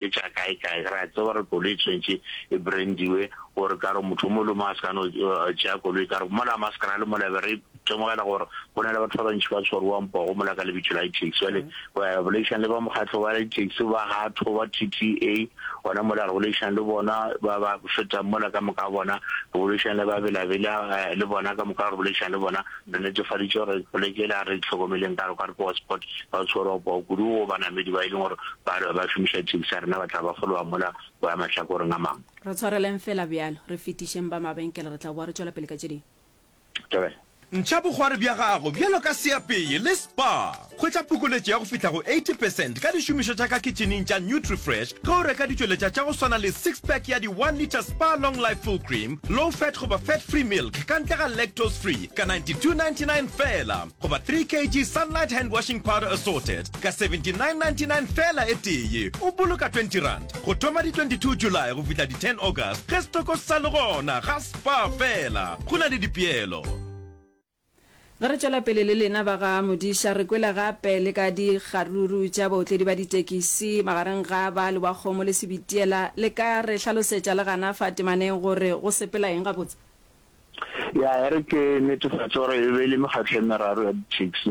e tša kae kae, re a tseba gore koloi e tshwanetse e brandiwe gore ka gore motho mo le mo a se ka no tšea koloi ka gore mola maskana le mola be re temogela gore go na le batho ba bantši ba tshwariwang pogo mola ka lebitso la di-taxi jale eh, boleišang le ba mokgatlho wa di-taxi ba gatho ba t t a gona mola re boleišang le bona ba ba fetang mola ka moka bona re boleišang le ba belabela eh, le bona ka moka re boleišang le bona Re netefaditše gore poleke yela a re e hlokomeleng ka kwa Ripoa Sport ba o tshwerwa poo kudu wo banamedi ba e leng gore ba re ba šomiša thekisi ya rena ba tla ba fologa mola go ya mahlakoreng a mangwe. Re tshwareleng feela bjalo, re fetišeng ba mabenkele, re tla boa re tšwela pele ka tše dingwe. Durban. Ntšha bogwari bja gago bjalo ka seapeye le spa. Hwetša phokoletšo ya go fihla go 80 percent ka dišomišo tša ka kitšhining tša Nutrifresh ge o reka ditšweletša tša go swana le six pack ya di one litre Spar Long Life Full Cream, Low Fat goba Fat Free Milk ka ntle ga Lactose Free ka 92.99 feela goba three kg Sunlight Hand Washing Powder Assorted ka 79.99 feela e tee. O boloka twenty rand go thoma di 22 July go fihla di ten August ge setoko se sa le gona. Ga Spar feela go na le dipeelo. Ge re tšwela pele le lena ba ga Modiša, re kwele gape le ka dikgaruru tša baotledi ba ditekisi magareng ga ba Lewakgomo le Sebitiela. Le ka re hlalosetša le gana fa temaneng gore go sepela eng gabotse? Ya, e re ke netefatše gore e be e le mekgatlo e meraro ya ditaxi.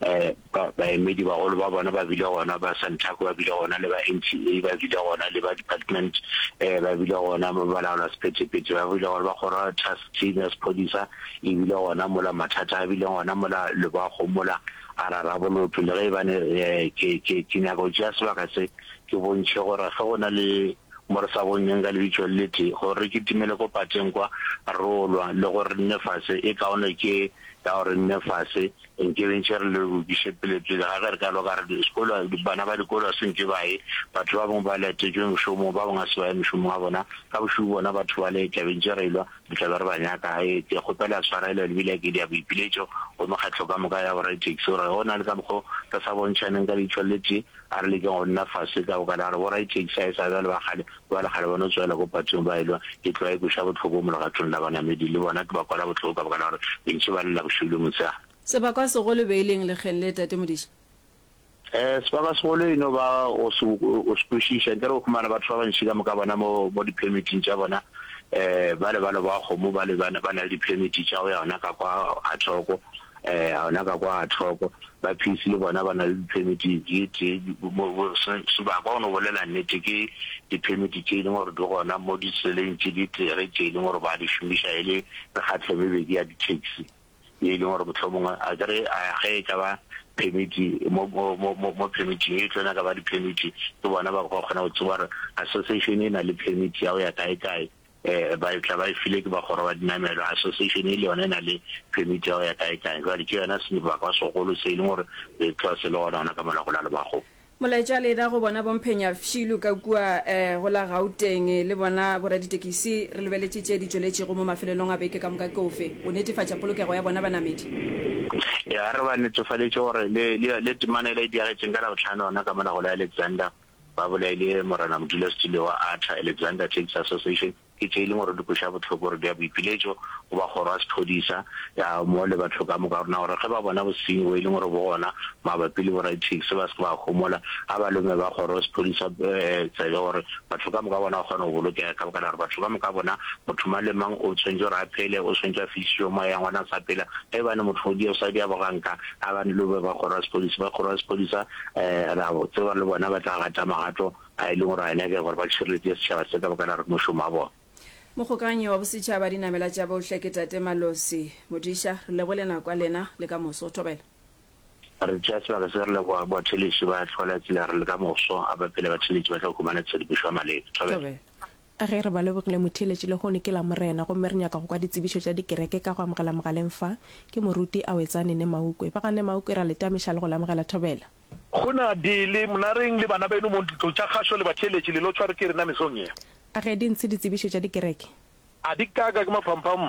um baemedibagolo ba bona ba bile gona, ba Santaco ba bile gona, le ba NTA ba bile gona, le ba department um ba bile gona, ba balaola sephethephethe ba bile gona, ba kgoro task team ya sephodisa e bile gona mola, mathata a bile gona mola, lebago mola, a ra rabolotho le ge e bane um ke ke ke nyaka go tšea sebaka se ke bontšhe gore ge go na le mo re sa bonyeng ka lebitšo le tee gore re kitimele ko pateng kwa rolwa le gore nne fase e kaone ke ya gore nne fase Re nke re ntše re le bokiše pele pele ga ge re ka loka re sekolo bana ba dikolo ga se nke ba ye batho ba bangwe ba letetšwe mošomong ba bangwe ga se ba ye mošomong wa bona ka bošubu bona batho ba le tlabe ntše re ilwa re tlabe re ba nyaka ge ke kgopela ya tshwarelo le bile ke dia boipiletšo go mekgatlo ka moka ya boraditekisi gore go na le ka mokgwa re sa bontšhaneng ka leitlho le tee A re lekeng go nna fase ka gokane, a re boraithekisi a e sa bjale ba kgale bjale kgale ba no tswela ko patong ba elwa ke tloa e kweša bohloko mo legatong la banamedi. Le bona ke ba kwala bohloko ka baka la gore bentši ba lela bošego le motshegare. Sebakwa se golo e be e leng lekgeng le, Tate Modiša? Ee, sebakwa se golo e no ba go se o se kwešiša. Nke re o humana batho ba bantši ka moka bona mo mo di-permit-ing tša bona, ee, bale ba loba kgomo bale ba na le di-permit tša go ya gona ka kwa ga thoko. eh, a ona ka kwa a thoko ba phisi le bona ba na le diphemiti ye tee sebaka o no bolela nnete ke diphemiti tse e leng gore di gona mo diseleng tse di tere tse e leng gore ba di šomiša e le mekgatlho mebedi ya di-taxi ye e leng gore motlho mongwe a kere ge e ka ba phemiti mo phemiting e tlona ka ba diphemiti ke bona ba go kgona go tseba gore association e na le phemiti ya go ya kae kae um ba tla ba e file ke bakgoro ba dinamelwa association e le yone e na le permit ya go ya kae kae jwale ke yona sebaka segolo se e leng gore re tloa se le gona gona ka mola go la lebago Molaetša le ra go bona Bomphenya Fshilu ka kua um go la Gauteng le bona boraditekisi re lebeletše tše di tšweletšego mo mafelelong a beke ka moka ke ofe go netefatša polokego ya bona banamedi? Ya re ba netofaletše gore le le temana e la e diagetšeng ka Labohlano gona ka mola go la Alexander ba bolaile Morena Modulasetulo wa ATRA, Alexander Taxi Association, ke tše e leng gore di kweša bohloko gore di a boipiletšo go ba kgoro ya sephodisa ya mo le batho ka moka rona gore ge ba bona bosenyi bo e leng gore bo gona mabapi le boraditaxi ba se ke ba homola a ba lome ba kgoro sephodisa tsebe gore batho ka moka bona ba kgona go bolokega ka baka la gore batho ka moka bona motho mang le mang o tshwanetse gore a phele o tshwanetse a fisiwe moya ngwana sa phela ge ba ne motho o di o sa di a boganka A ba ne le be ba kgoro ya sepodisa, ba kgoro ya sepodisa um ra tseba le bona ba tla gata magato a e leng gore a nyake gore ba tšhireletse setšhaba se ka baka la re mošomo wa bona. Mogokanyi wa Bosetšhaba Dinamela tša Bohle ke Tate Malosi Modiša, re lebole nako ya lena le ka moso. O thobela. Re tšea sebaka se re leboga batheeletši ba tlhola tsela ya re le ka moso a ba pele batheeletši ba tla go humana tshedimošo ya maleba. Thobela. A Ge re ba lebogile motheeletši lehono ke Lamorena gomme re nyaka go kwa ditsebišo tša dikereke ka go amogela mogaleng fa, ke moruti Awetsane ne Maukwe. Ba ga ne Maukwe ra le tameša le go le amogela thobela. Go na dile mna reng le bana beno mo ntlo tša kgašo le batheeletši le lo tshware ke rena mesong ye? A Ge di ntshe ditsebišo tša dikereke? A di ka ka ke maphamphamm?